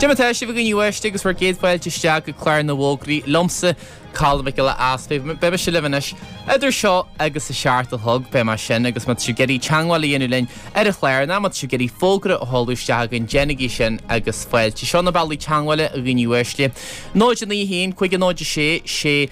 Cad é mar atá sibh a dhaoine uaisle agus bhur gcéad fáilte isteach go Clár na bhFógraí liomsa, Colm Mac Giolla Easpaig. Beidh mise libh anois idir seo agus a seacht a chlog, beidh mé sin agus má tá sibh ag iarraidh teagmháil a dhéanamh linn ar an chlár nó má tá sibh ag iarraidh fógra a sheoladh isteach chugainn, déanaigí sin agus fáilte. Seo na bealaí teagmhála a dhaoine uaisle, 091 50 66.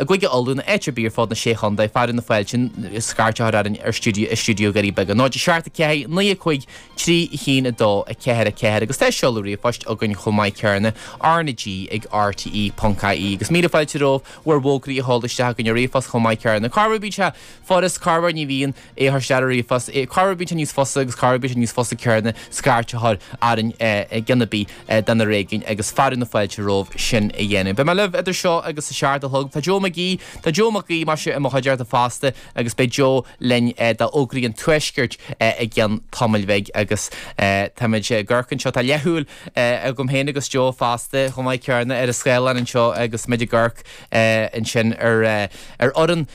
I gCúige Uladh nó áit ar bith ar fud na Sé Chontae, fearadh na fáilte scairt a chur orainn ar stiúideo Dhoirí Beaga 0 7 4 9 5 3 1 2 4 4 agus tá seoladh ríomhphoist againn chomh maith céarna RnaG ag RTÉ.ie agus míle fáilte romhaibh bhur bhfógraí a sheoladh isteach chugainn ar ríomhphost chomh maith céarna. Corruair bíonn sé furast, corruair ní bhíonn é a chur isteach ar ríomhphost, corruair bíonn sé níos fusa agus corruair bíonn sé níos fusa céarna scairt a chur orainn i gceann ar bith de na réigiúin agus fearadh na fáilte romhaibh sin a dhéanamh. Beidh mé libh idir seo agus a seacht a chlog. Tá Joe McGee, tá Joe Mac Aoidh, mar sin, i mo chuideachta fosta agus beidh Joe linn d'fhógraí an Tuaiscirt i gceann tamaill bhig agus tá muid ag amharc anseo, tá leathshúil agam féin agus Joe fosta chomh maith céarna ar an scáileán anseo agus muid ag amharc. ansin ar fhoireann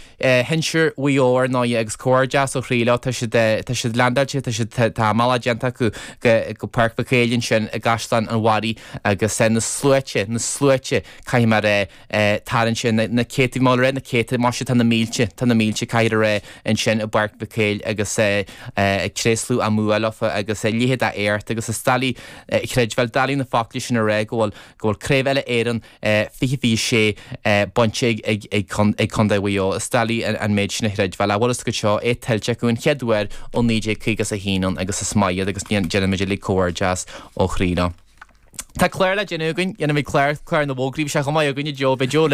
shinsir Mhaigh Eo, ar ndóigh, agus comhghairdeas ó chroí leo. Tá siad leaindeáilte, tá siad, tá a mbealach déanta acu go Páirc Mhic Éil ansin i gCaisleán an Bharraigh agus na sluaite, na sluaite, caithfear a tarraingt sin, na céadta, má raibh na céadta, má sea, tá na mílte, tá na mílte, caithfear a rá ansin i bPáirc Mhic Éil agus ag tréaslú a mbua leo agus a leithéid de radharc agus is doiligh a chreidbheáil, doiligh na focla sin a rá go bhfuil, go bhfuil Craobh Uile-Éireann, 2026 bainte ag Contae Mhaigh Eo. Is doiligh an méid sin a chreidbheáil. An bhfuil a fhios agaibh seo, é tuillte acu an chéad uair ó 1951 ann agus is maith iad agus déanaimid uilig comhghairdeas ó chroí leo. Tá clár le déanamh againn, déanfaimid clár, clár na bhfógraí, bheadh sé chomh maith againn, a Joe, beidh Joe linn,